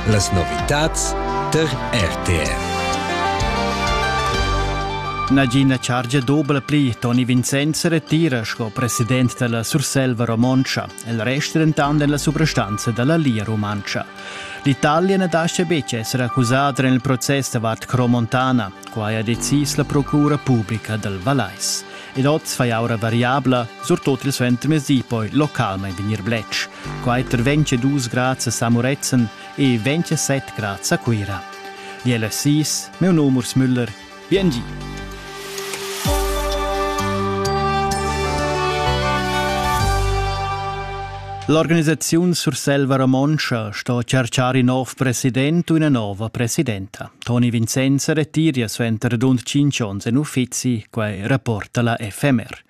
Las novitads tar RTR. Nagina chargia dobla pli Toni Vincenz retira sco president della Surselva Romontsch, il rest dentant en la subrestanza della Lia Rumantscha. L'Italia na lascia betg essere accusata nel processo davart Cromontana, quai ha decis la Procura Pubblica del Valais. Ed oz fai aura variabla, surtut il suenter mezdi poi localmain vegnir bletsch. Quai per 22 grads a Samuretzen e 27 grads a Cuira. Die LSIs, meu num Urs Müller, BNG. L'organisaziun Surselva Romontscha sto tscharchar in nov president u ina nova presidenta. Toni Vincenz retiria suenter radund tschintg onns en uffizi quai rapporta la FMR.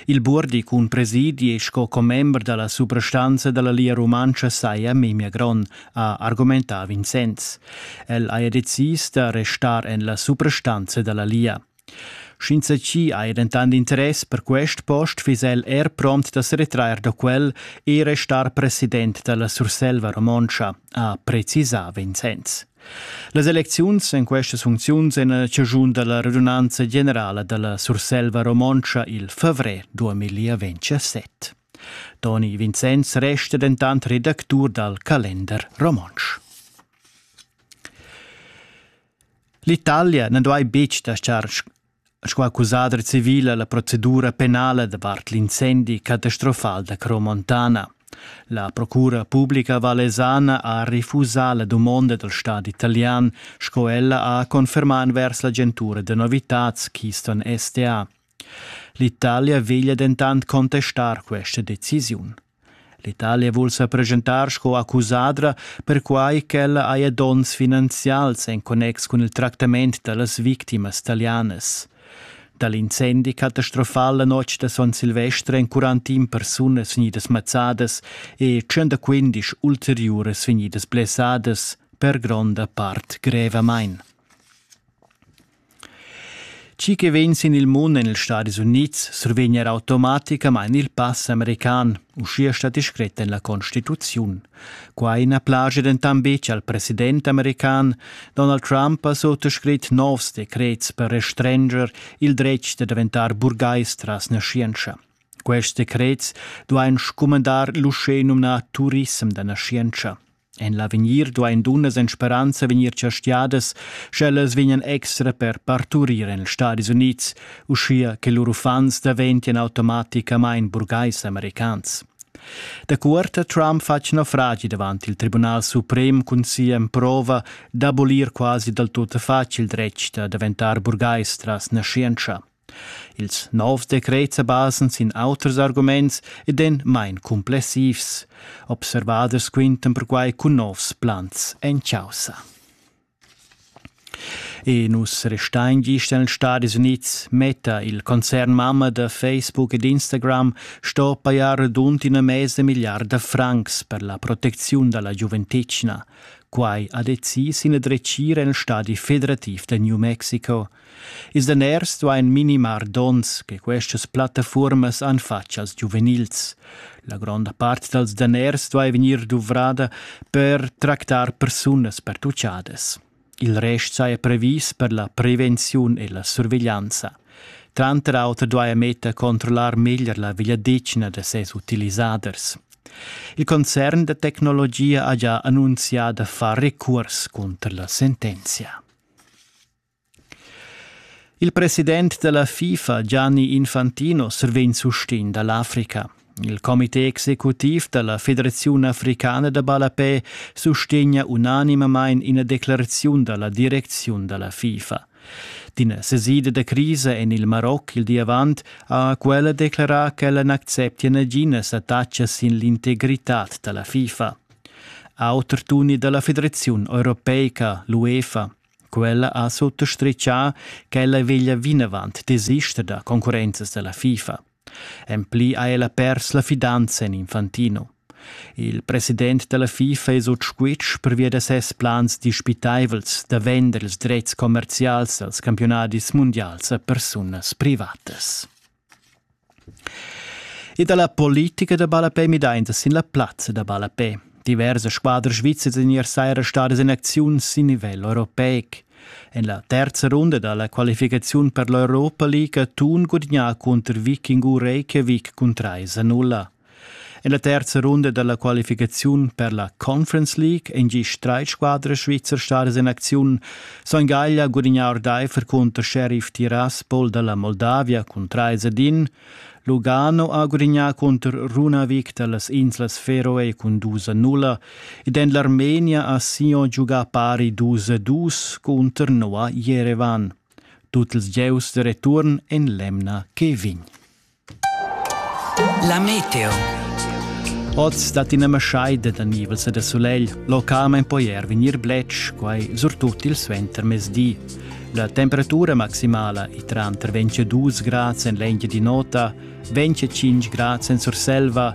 Il Burdi cun presidi e sco commember dalla suprastanza dalla Lia Rumantscha saja memia gron, ha argumentà Vincenz. El haja decis da restar en la suprastanza dalla Lia. Sch'insatgi ha dentant interess per quest post fiss el er pront da seretrair da quel e restar president da la Surselva romontscha, ha precisà Vincenz. Las elecziuns en questas funcziuns en la chaschun da la radunanza generala da la Surselva romontscha il favrer 2027. Toni Vincenz resta dentant redactur dal Kalender romontsch. L'Italia na duai betg laschar sco accusadra civila la procedura penala davart l'incendi catastrofal da Cromontana. La procura publica valesana ha refusà la dumonda dal stat italian, sco ella ha confermà envers l'agentura da novitads Keystone STA. L'Italia veglia dentant contestar questa decisiun. L'Italia vul sa presentar sco accusadra perquai ch'ella haja donns finanzials en connex cun il tractament da las victimas talianas. Da l'incendi catastrofal la notg da Son Silvester èn quarantin persunas vegnidas mazzadas e 115 ulteriuras vegnidas blessadas, per gronda part grevamain. Chi che vegn sin il mund en ils Stadis Unids survegn er automaticamain il pass american, uschia stat discret en la Constituziun. Quai na plagia dentant betg al president american Donald Trump ha suttascrit novs decrets per restrenger il dretg da daventar burgais tras naschientscha. Quests decrets duain scumandar l'uschè numnà turissem da naschientscha. En l'avegnir duain dunnas en speranza vegnir chastiadas, sch'ellas vegnan extra per parturir en ils Stadis Unids, uschia che lur uffants daventian automaticamain burgais-americans. Da cuort Trump fatg naufragi davant il Tribunal suprem cun sia emprova d'abolir quasi dal tut facil dretg da daventar burgais tras naschientscha. Ils novs decrets sa basan sin auters arguments ed èn main cumplessivs. Observaders quintan perquai cun novs plans en chaussa. E nus restein gist en Stadis Unids metta il concern mamma da Facebook ed Instagram sto pajar radund ina mesa milliarda francs per la protecziun dalla giuventetgna. Quai ha decis ina dretgira en stadi federativ da New Mexico. Ils daners duain minimar donns che questas plattafuormas han fatg als giuvenils. La gronda part dals daners duai vegnir duvrada per tractar persunas pertuchadas. Il rest saja previs per la prevenziun e la surveglianza. Tranter auter duaja Meta controllar meglier la vegliadetgna da ses utilisaders. Il concern da tecnologia ha già annunzià da far recurs cunter la sentenzia. Il president della FIFA Gianni Infantino survegn sustegn dall'Africa. Il comité executiv dalla Federaziun africana da ballapè sustegna unanimamein ina declaraziun dalla direcziun dalla FIFA. D'ina sesida da crisa en il Maroc il di avant ha quella declarà ch'ella n'acceptia naginas attacas sin l'integritad da la FIFA. Auter tuni dalla Federaziun europeica, l'UEFA, Quella ha sottastritgà ch'ella veglia vinavant desister da concurrenzas da la FIFA. En pli ha ella pers la fidanza en Infantino. Il president da la FIFA è sut squitsch pervia da ses plans dispitaivels da vender ils dretgs commerzials als campiunadis mundials a persunas privatas. E dalla politica da ballapè midainta sin la plazza da ballapè. Diversas squadras svizzers in ier saira stadas in acziun sin nivel europeic. En la terza runda dalla qualificaziun per l'Europa League ha Thun gudignà cunter Viking u Reykjavik cun 3 a 0. En la terza runda dalla qualificaziun per la Conference League ein gie streitsquadra svizzer stadas in acziun. Son Gaglia gudignar ordeifer cunter Sheriff Tiraspol dalla Moldavia cun 3 ed 1. Lugano ha gudignar cunter Runavik dallas inslas Feroe cun 2 a 0 ed en l'Armenia ha Sion giugà pari 2 a 2 cunter Noa Jerevan. Tut ils gieus de return en l'emna che vegn. La meteo. Oz dat ina maschai da nivels e da sulegl, localmain poi er vegnir bletsch, quai surtut il suentermezdi. La temperatura maximala è tranter 22 grads en l'engia di nota, 25 grads en Surselva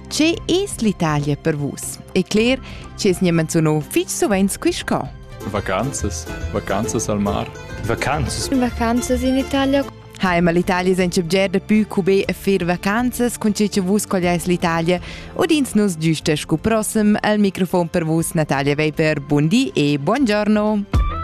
Che es l'Italia per vus? E cler, che es gnä menziunò fich suvent qui sco. Vacanzas, vacanzas al mar. Vacanzas. Vacanzas in Italia. Hai, ma l'Italia senza bger da più cube a fer vacanzas con ce che vus colleis l'Italia udins nos giusta scu prossim al microfon per vus Natalia Weber. Buondì e buongiorno.